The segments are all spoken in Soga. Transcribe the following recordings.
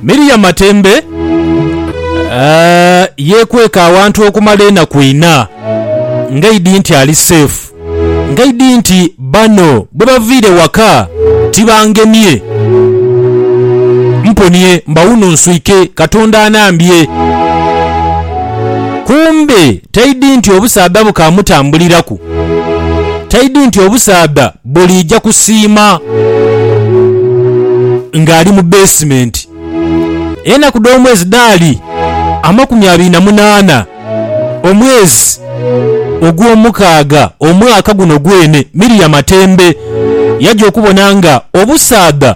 Miriam Matembe yeekweka awantu okumala enaku ina ng'aidhi nti ali seefu ng'aidhi nti bano bwe baviire waka tibangemye. Mponie mbawuno nswike Katonda anambye. Kumbe taidhi nti obusaadha bukaamutambuliraku, taidhi nti obusaadha Buliija kusiima ng'ali mu beesimenti. Enaku dh'omwezi dhaali amakumi abiri na munaana, omwezi ogw'omukaaga omwaka guno gwene. Miriamu Matembe yaja okubona nga obusaadha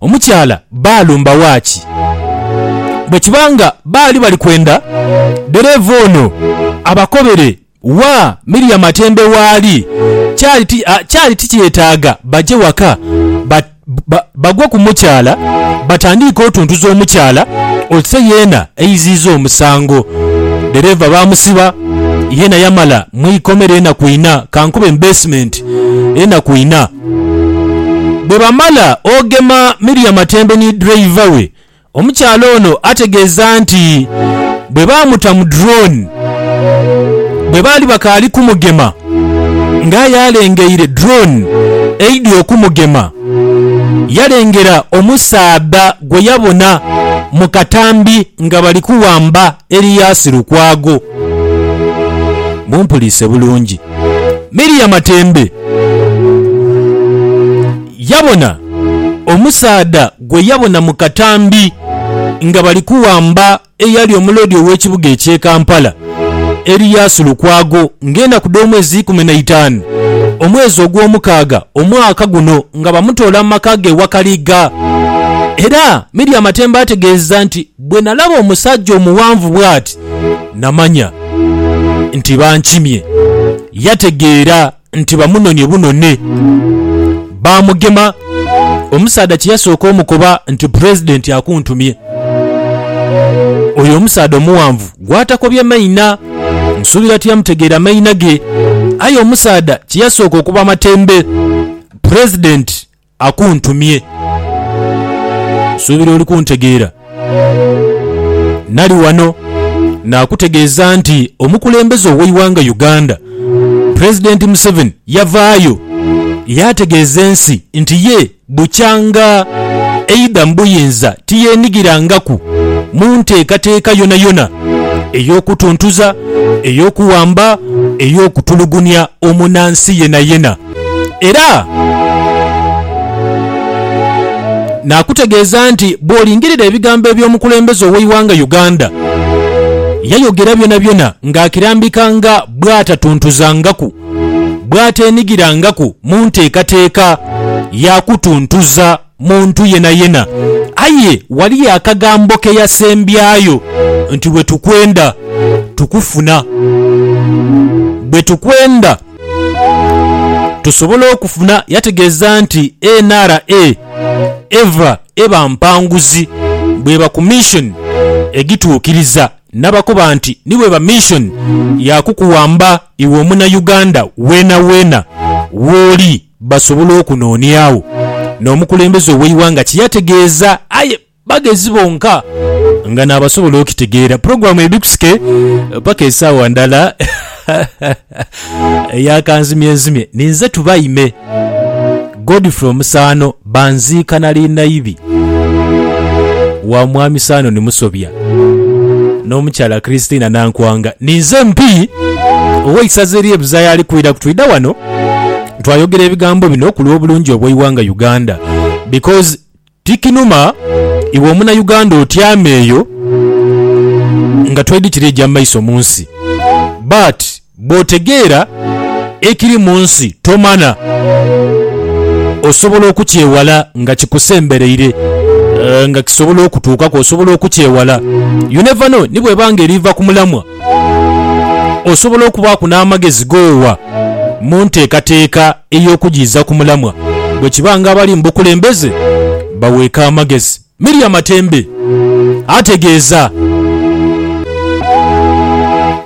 Omukyala baalumba waaki? Bwe kiba nga baali bali kwenda dhereeva ono abakobere wa Miriam Atende waali, kyali tikyetaaga baje waka bagwe ku mukyala batandiike otuntuza omukyala ose yeena eiziiza omusango. Dhereeva baamusiba yeena yamala mu ikomera enaku ina, kankube mu beesimenti enaku ina. Bwe bamala ogema Miriam atembe ni ddereeva we, omukyala ono ategeeza nti bwe baamuta mu drone bwe baali bakaali kumugema nga aye alengeire drone eidhi okumugema yalengera omusaadha gwe yabona mu katambi nga bali kuwamba Elias Lukwago, Mumpuliise bulungi, Miria Matembe yabona omusaadha gwe yabona mu katambi nga bali kuwamba eyali omuloodi ow'ekibuga eky'e Kampala, Elias Lukwago ng'enaku dh'omwezi ikumi na itaanu omwezi ogw'omukaaga omwaka guno nga bamutoola mu maka ge e Wakaliga era Miria Matembe ategeeza nti Bwe nalaba omusajja omuwanvu bw'ati, namanya nti bankimye. Yategeera nti bamunonye bunone, baamugema. Omusaadha kye yasooka omukoba nti Pulezidenti akuntumye. Oyo omusaadha omuwanvu gw'atakobye maina, nsuubira tiyamutegeera maina ge, aye omusaadha kye yasooka okuba amatembe, Pulezidenti akuntumye. Nsuubira oli kuntegeera. Nali wano naakutegeeza nti omukulembeze ow'eighanga Uganda, Pulezidenti Museveni yavaayo yaategeeza ensi nti ye bukyanga eidha mu buyinza tiyeenhigirangaku mu nteekateeka yonayona ey'okutuntuza, ey'okuwamba, ey'okutulugunia omunansi yenayena. Era naakutegeeza nti bw'olingirira ebigambo eby'omukulembeze ow'eighanga Uganda, yayogera byonabyona ng'akirambika nga bw'atatuntuzangaku, bw'ateenhigirangaku mu nteekateeka ya kutuntuza. muntu yenayena. Aye ghaliyo akagambo ke yasembyayo nti, Bwe tukwenda, tukufuna. Bwe tukwenda, tusobola okufuna. Yategeeza nti NRA eva eba mpanguzi bw'eba ku mission egituukiriza n'abakoba nti ni bw'eba mission ya kukuwamba iwe Omunayuganda weenaweena w'oli. basobola okunooniagho n'omukulembeze ow'eighanga kye yategeeza aye bagezi bonka nga n'abasobola okitegeera. Pulogulaamu ebikusike paka esaawa ndala eya kanzimyenzimye ninze Tubaime Godfrey Omusaano. Banziika nali naibi wa Mwami Sanon Musobya n'omukyala Christina Nankwanga. Ninze MP ow'eisaza ery'e Buzaaya ali kwidha kutwidha wano twayogera ebigambo bino ku lw'obulungi obw'eighanga Uganda because tikinuma iwe omunauganda otyame eyo nga toidhi kiri eja maiso mu nsi but Bw'otegeera ekiri mu nsi tomana, osobola okukyewala nga kikusembereire, nga kisobola okutuukaku osobola okukyewala. You never know ni bw'eba nga eriva ku mulamwa. Osobola okubaaku n'amagezi g'owa mu nteekateeka ey'okugiiza ku mulamwa bwe kiba nga abali mu bukulembeze baweeka amagezi. Miria Matembe ategeeza.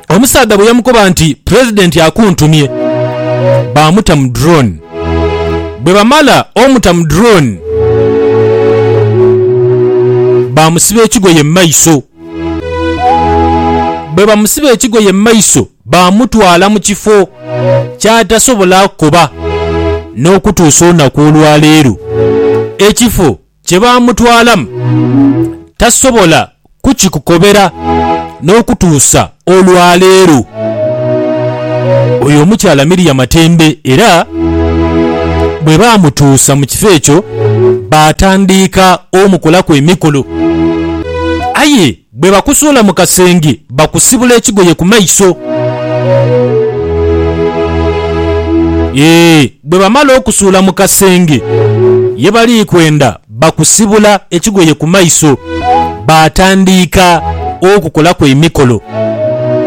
Omusaadha bwe yamukoba nti Pulezidenti akuntumye, baamuta mu drone. Bwe bamala omuta mu drone, baamusiba ekigoye mu maiso. Bwe bamusiba ekigoye mu maiso, baamutwala mu kifo ky'atasobola kukoba n'okutuusa olunaku olwaleero. Ekifo Kye baamutwalamu tasobola kukikukobera n'okutuusa olwaleero. Oyo omukyala Miria Matembe era bwe baamutuusa mu kifo ekyo baatandiika omukolaku emikolo aye Bwe bakusuula mu kasenge, bakusibula ekigoye ku maiso. Ee, bwe bamala okusuula mu kasenge ye bali kwenda, bakusibula ekigoye ku maiso, baatandiika okukolaku emikolo.